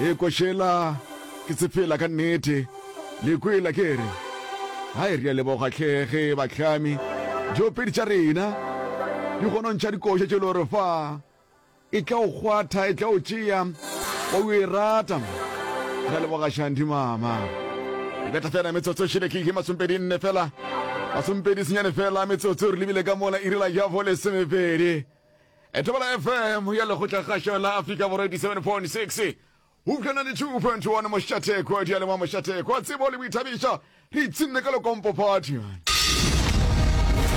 Ee, ko šela ke tsefela ka nnete. Le kwela ke re? Hai, re a leboga hle ge bahlami diopedi tša rena di gonontšha dikoša tše le gore fa e tla o kgwatha, e tla o tšea, wa o e rata. Re a leboga Shandy mama. Re beta fela metsotso e šele ke ihe masompedi nne fela. Masompedi senyane fela metsotso re lebile ka mola irile ya bo lesomepedi. Etebela FM ya Lekgotlakgašo la Afrika Borwa 87.6 eupša 92.1 Mošathekwa, diyalemoya Mošathekwa, tsebo le boithabišo, re itsinne ka lekompophadi.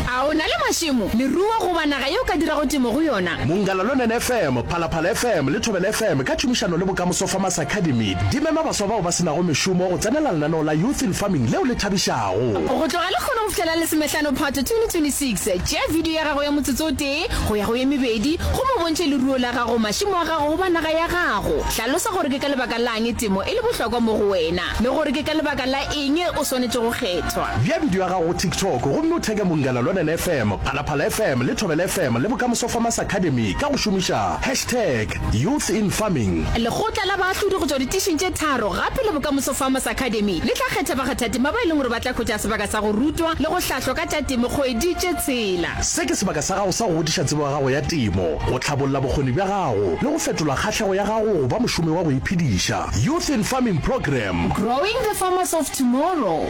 A o na le mašemo, leruo goba naga ye o ka dirago temo go yona? Monggalalonen FM, Phalaphala FM le Thobela FM ka tšhomišano le Bokamoso Farmers Academy di mema baswa bao ba se nago mešomo go tsenela lenaneo la Youth in Farming leo le thabišago. Go tloga lehono go fihlela Lesomehlano Phato 2026, Tšea vidio ya gago ya motsotso o tee go ya go ye mebedi gomme o bontšhe leruo la gago, mašemo a gago goba naga ya gago. Hlalosa gore ke ka lebaka la'ng temo e le bohlokwa mo go wena le gore ke ka lebaka la eng o swanetše go kgethwa. Bea vidio ya gago go TikTok gomme o theke Mongala Lwanene FM, Phalaphala FM le Thobela FM le Bokamoso Farmers Academy ka go šomiša hashtag YouthInFarming. Lekgotla la baahlodi go tšwa ditišing tše tharo gape le Bokamoso Farmers Academy le tla kgetha bakgathatema ba e leng gore ba tla hwetša sebaka sa go rutwa le go hlahlwa ka A tša temo kgoeditše tsela. Se ke sebaka sa gago sa go godiša tsebo ya gago ya temo, go tlhabolla bokgoni bja gago le go fetola kgahlego ya gago go ba mošomi wa go iphediša. Youth in Farming Program. Growing the farmers of tomorrow.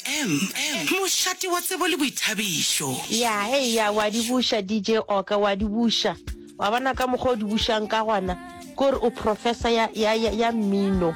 M, Mošate wa tsebo le boithabišo. Ya, eya, wa di buša, DJ Oka, wa di buša. Wa bona ka mokgwa o di bušang ka gona? Ke gore o professor ya, ya, ya, ya mmino.